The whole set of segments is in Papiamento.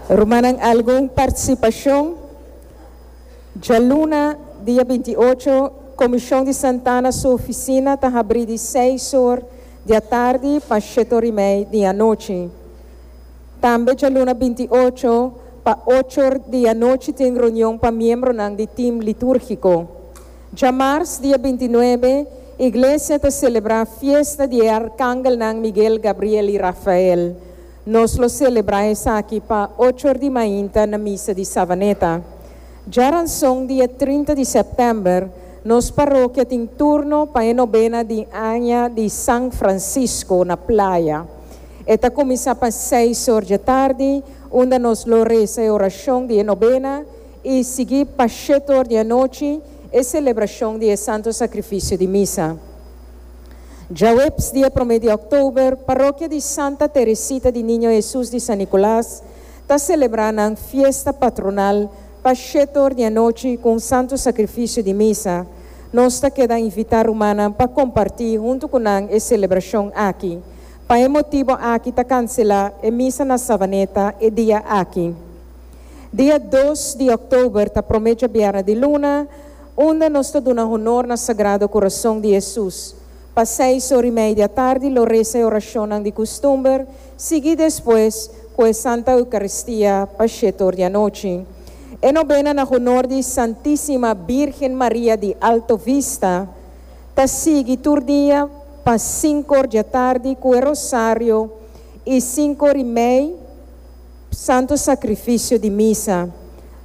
Rumannan algun partisipashon? Djaluna, dia binti i ocho, Komishon di Santana su ofisina ta habrí di seis or di atardi pa sheto rimei di anochi. Tambe djaluna binti i ocho, pa ocho or di anochi tin reunion pa miembronan di tim litúrgiko. Djamars dia binti nuebe, Iglesia ta selebrá fiesta di e arkangelnan Miguel, Gabriel i Rafael. Nos lo selebrá esaki pa ocho or di mainta na misa di Savaneta. Dja ranson dia trinta di sèptèmber, nos parokia tin turno pa e nobena di aña di San Francisco na playa. E ta kuminsá pa seis or dje tardi, unda nos lo resa e orashon di e nobena, I sigui pa shet or di anochi e selebrashon di e Santo Sakrifisio di Misa. Djaweps di e promé di òktober, Parokia di Santa Teresita di Niño Hesus di San Nikolas ta selebrá nan fiesta patronal pa shet or di anochi ku un Santo Sakrifisio di Misa. Nos ta keda invitá rumannan pa kompartí huntu ku nan e selebrashon aki. Pa e motibu aki ta kanselá e Misa na Savaneta e dia aki. Dia dos di October ta prome djabièrnè di luna, unda nos ta duna honor na Sagrado Corazon di Hesus. Pa seis or i media tardi lo resa e orashonnan di custumber, sigui despues cu e Santa Eucaristia pa shete or di anochi. E nobena na honor di Santisima Birgen Maria di Alto Vista ta sigui tur dia pa sinku or djatardi cu e rosario i sinku or i mei, Santo Sacrificio di Misa.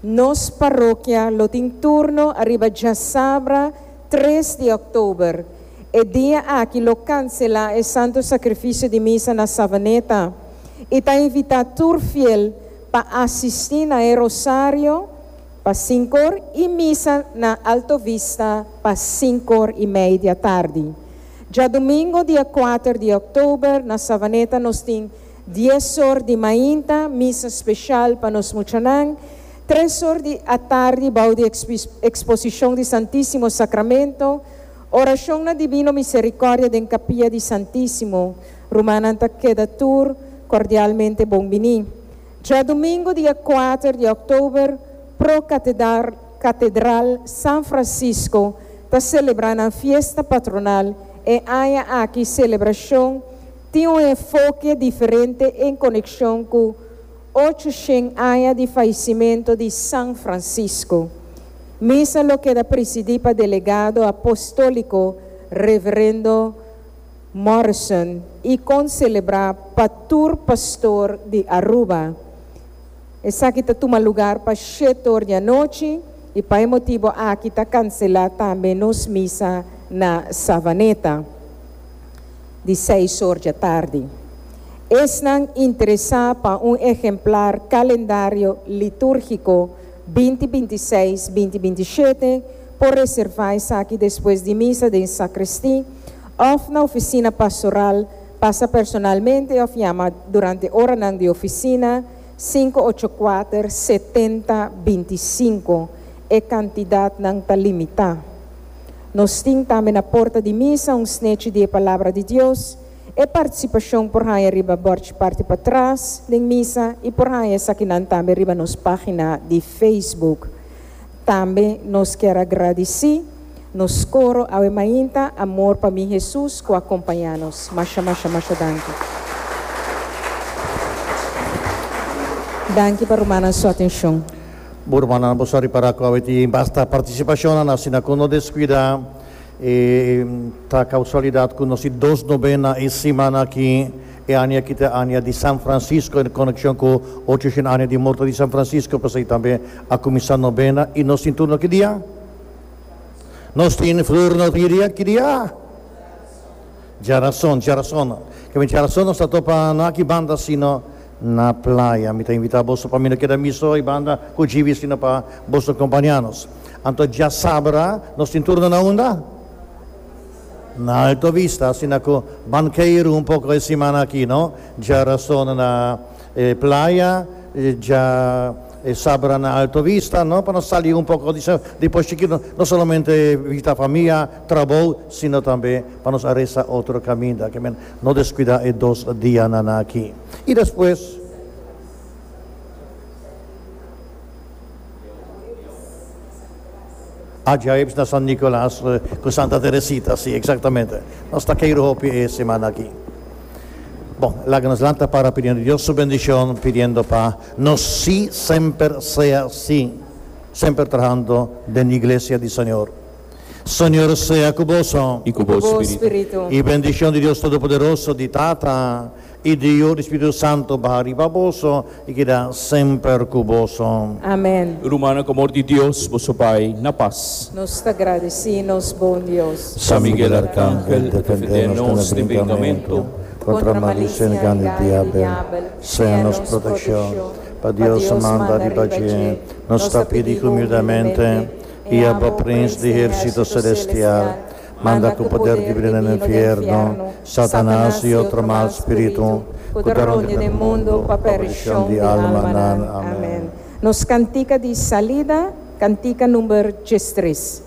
Nos parokia lo tin turno ariba djasabra tres di october. E dia aki lo cancelá e Santo Sacrificio di Misa na Savaneta i ta invitá tur fiel pa asistí na e rosario pa sinkor i misa na Alto Vista pa sinkor i media tardi. Djadumingo dia kuater di october na Savaneta nos tin. Dies or di mainta, misa special pa nos muchanan. Tres or di atardi bou di exposicion di Santisimo Sacramento, oracion na Divino Misericordia den Capilla di Santisimo. Rumannan ta keda tur cordialmente bon bini. Djadumingo dia kuater di October, pro Catedral San Francisco ta celebra nan fiesta patronal e aña aki celebracion. Tin un enfoke diferente en konekshon ku ocho shen aña di falisimentu di San Francisco. Misa lo keda prisidí pa delegado apóstóliko Reverendo Morrison i kon selebrá pa tur pastor di Aruba. Esaki ta tuma lugar pa shete or di anochi i pa e motibu aki ta kanselá tambe nos misa na Savaneta. di seis or dje tardi. Esnan interesá pa un ehemplar Calendario Litúrgico binti binti i seis, binti binti i shete por reservá esaki despues di misa den sacristí òf na Oficina Pastoral, pasa personalmente òf yama durante oranan di oficina, sinku ocho kuater setenta binti i sinku. E kantidatnan ta limitá. Nos tin tambe na porta di misa un snechi di e Palabra di Dios. E partisipashon por haña riba bòrd parti patras den misa i por haña esakinan tambe riba nos página di Facebook. Tambe nos kier a gradisí nos koro awe mainta Amor pa mi Hesus ku a kompañá nos. Masha masha masha danki. Danki pa rumannan su atenshon. Bo rumannan bo sa ripará ku awe tin yin basta partisipashonnan asina ku no deskuidá e ta kausualidat ku nos tin dos nobena e simana aki. E aña aki ta e aña di San Francisco en konekshon ku ochocion aña di morto di San Francisco pasei tambe a kuminsá nobena i nos tin turno ki dia? Nos tin flor no tin dia ki dia? Djarason djarason kimen djarason nos ta topa no aki banda sino. na playa. Mi ta invita boso pa mi no keda mi so, i banda ku Jivi sino pa boso kompaña nos. Anto dja sabra nos tin turno na unda? Na Alto Vista, asina ku ban keiru un poko e simana aki, no? Dja rasono na e playa, dja e sabra na Alto Vista, no? Pa nos sali un poko di esnan di Pochi Chikitu, no? No solamente visita famia, trabou, sino tambe pa nos a resa otro kaminda. No descuida e dos diananan aki. I despues. Ajaibs na San Nicolas cu Santa Teresita. Si, exactamente. Nos ta kei hopi e semana aki. Bon, laga nos lanta para pidiendo Dios su bendicion, pidiendo pa nos si semper sea si, semper trahando den Iglesia di Señor. Señor sea cu boso. I cu bo spiritu. I bendicion di Dios Todopoderoso, di Tata, i di Yu, di Spiritu Santo baha riba boso i keda semper cu boso. Amen. Rumannan cu amor di Dios boso bai na pas. Nos ta gradici nos bon Dios. San Miguel Arcangel, defende nos den bringamento. Contra malicia y engan di diabel, sea nos proteccion. Pa Dios manda riba dje, nos ta pidi humildemente. I abo prins di hersito selestial manda ku poder di bida den infierno, Satanas i otro mal spiritu ku ta rondi pa e mundu pa perdishon di almanan. Amen. Nos kantika di salida, kantika number djestris.